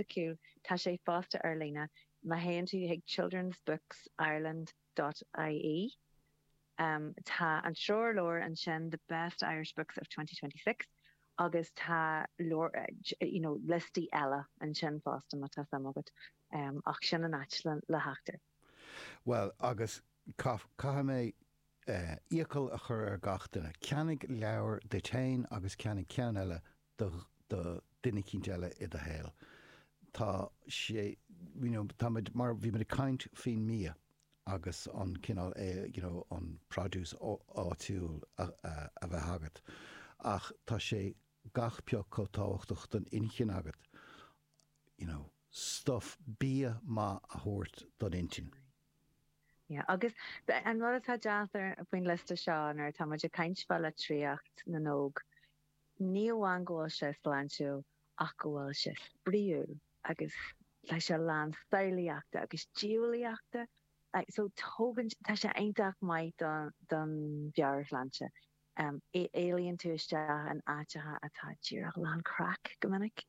acu tá sé fosta ar líne má théann tú chuig childrensbooksireland dot ie. Tá an treoirleabhar ansin The Best Irish Books of 2026 agus tá lear you know liostaí eile ansin fosta má tá suim agat ach sin an áit le theacht air. Bhuel agus caithfidh mé iachall a chur ar gach duine, ceannaigh leabhar duit féin agus ceannaigh ceann eile do duine eicínt eile i do shaol. Tá sé, you know, tá muid, mar bhí muid ag caint faoin mbia agus an cineál eh, you know, an produce áitiúil a bheith agat ach tá sé gach pioc chomh tábhachtach don inchinn agat, you know, stuff, bia maith a thabhairt don intinn. Yeah, agus an rud atá deas faoin liosta seo nuair atá muid ag caint fá litríocht na n-óg, Ní amháin go bhfuil sé sláintiúil ach go bhfuil sé spraoiúil agus tá sé lán samhlaíochta agus diabhlaíochta so tugann sé, tá sé iontach maith don mheabhairshláinte. Éalaíonn tú isteach in áiteacha atá díreach lán craic go minic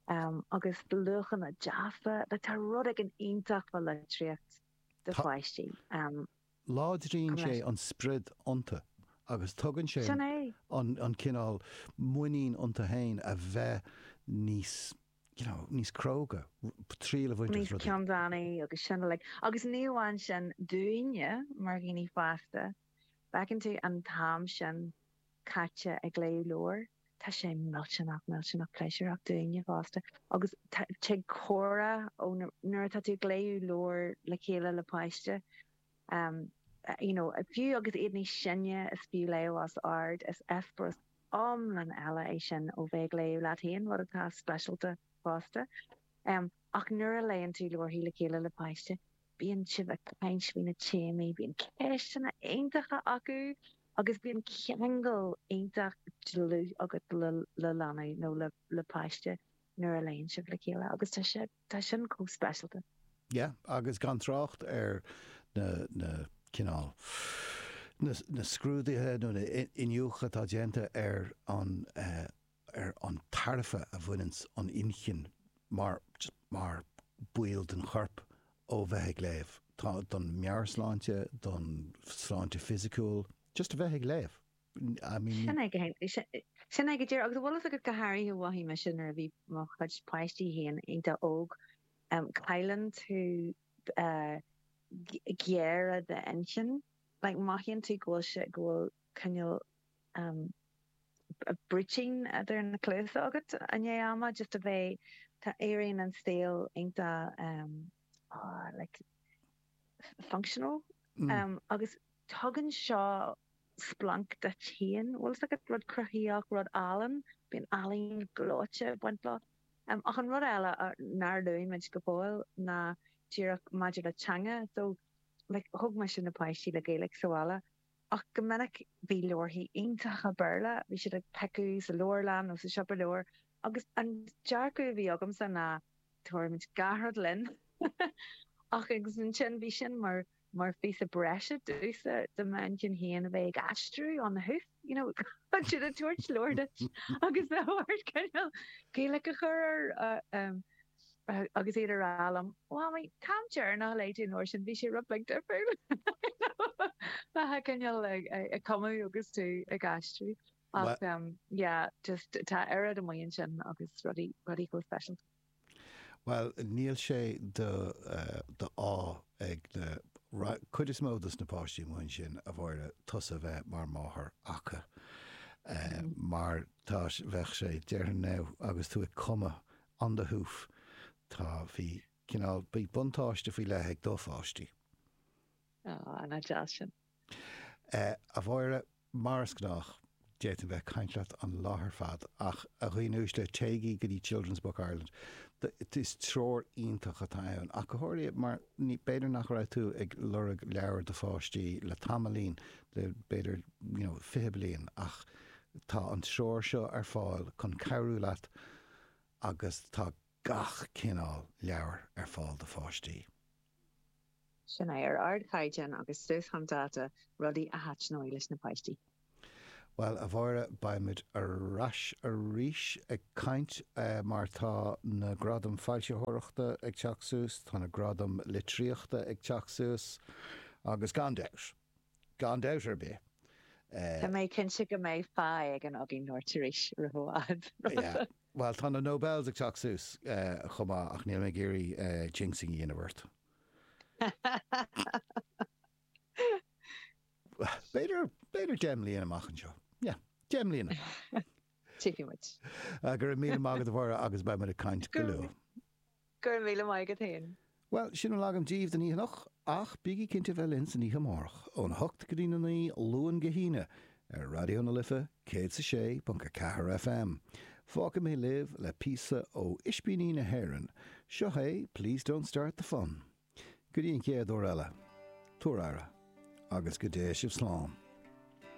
agus luachanna deasa. Tá rud éigin iontach fá litríocht do pháistí. Láidríonn sé an spriod iontu agus tugann sé an cineál muinín iontu féin a bheith níos you know níos cróga, triail a bhaint as rudaí. Níos ceanndánaí agus sin uilig. Agus ní amháin sin, dúinne mar dhaoine fásta, feiceann tú an t-am sin caite ag léamh leabhair. Tá sé millteanach, millteanach pléisiúrach dúinne fosta agus tig comhrá ó nuair atá tú ag léamh leabhair le chéile le páiste you know fiú agus iad níos sine is fiú léamh os ard is eispéireas iomlán eile é sin ó bheith ag léamh leat féin rud atá speisialta fosta ach nuair a léann tú leabharthaí le chéile le páiste Bíonn sibh ag caint faoi na téamaí, bíonn ceisteanna iontacha acu agus bíonn ceangal iontach dlúth agat le leanbh nó le páiste nuair a léann sibh le chéile agus tá sin chomh speisialta. Yeah, agus gan trácht ar na cineál, na scrúduithe nó an iniúchadh atá déanta ar an ar an tairbhe a bhaineann an inchinn mar mar ball den chorp ó bheith ag léamh. Tá don meabhairshláinte, don sláinte fisiciúil, just a bheith ag léamh. I mean ní. Sin é sin é go díreach. Agus tá a fhios agat go háirithe mhothaigh mise nuair a bhí mo chuid páistí féin iontach óg, cailleann tú giar i d'inchinn. Like mothaíonn tú go bhfuil sé go bhfuil cineál Brúitín idir na cluasa agat i ndiaidh ama just a bheith tá éiríonn an saol iontach like functional agus tugann seo splanc duit féin an bhfuil a fhios agat rud cruthaíoch rud álainn bíonn ealaín ghleoite ag baint leo ach an rud eile nár luaigh muid go fóill ná díreach maidir le teanga so like thóg mise na páistí le Gaeilge sa bhaile Ach go minic bhí leabharthaí iontacha Béarla, bhí siad ag piocaidh sa leabharlann nó sa siopa leabhar agus an dearcadh a bhí agamsa ná tabharfaimid gach rud linn ach agus ansin bhí sin mar mar phíosa breise domhsa do m'inchinn féin a bheith ag aistriú on the hoof, you know, chun siad ag tabhairt leabhar duit agus ag iarraidh cineál Gaeilge a chur air agus iad ag rá liom, Mhamaí, an t-am deireanach a léigh tú an leabhar sin, bhí sé rud beag difriúil. Bhí tú cineál ag cumadh agus tú ag aistriú. Ach yeah, just tá oiread de mhaoin ansin agus rudaí chomh speisialta. Bhuel, níl sé d'ádh ag an chuid is mó de na páistí muise, a Mháire, tusa bheith mar mháthair acu mar tá, bheadh sé, déarfainn now, agus tú ag cumadh on the hoof. Tá, bhí, cineál, bhí buntáiste faoi leith ag do pháistí. Aw, nach deas sin. A Mháire, mar is gnách, d'fhéadfainn bheith ag caint leat an lá ar fad ach, a dhaoine uaisle, téigí go dtí Children's Books Ireland. Is treoir iontach atá ann ach go háirithe mar b'fhéidir nach raibh tú ag lorg leabhair do pháistí le tamaillín, le b'fhéidir, you know, fiche bliain ach tá an treoir seo ar fáil chun cabhrú leat agus tá gach cineál leabhair ar fáil do pháistí. Sin é, ar ardchaighdeán agus suas chun dáta, rudaí a thaitneoidh leis na páistí. Bhuel, a Mháire, beimid ar ais arís ag caint mar tá na gradaim foilsitheoireachta ag teacht suas, tá na gradaim litríochta ag teacht suas agus gan dabht, gan dabht ar bith. Tá mé cinnte go mbeidh fáilte ag an Ogie North arís roimh i bhfad. Bhuel, tá na Nobels ag teacht suas chomh maith ach níl mé ag iarraidh jinxing a dhéanamh ort. B'fhéidir, b'fhéidir deich mbliana amach anseo. Yeah, deich mbliana. Tiocfaidh muid. Go raibh míle maith agat Mháire agus beidh muid ag caint go luath. Go raibh míle maith agat féin. Bhuel, sin a bhfuil agam díbh don oíche anocht, ach bígí cinnte a bheith linn san oíche amárach, óna hocht go dtí na naoi, Luan go hAoine, ar Raidió na Life, céad is a sé ponc a ceathair FM. Fágfaidh mé libh le píosa ó Ispíní na hÉireann. Seo é Please Don't Start the Fun. Go dtí an chéad uair eile, tabhair aire, agus go dté sibh slán.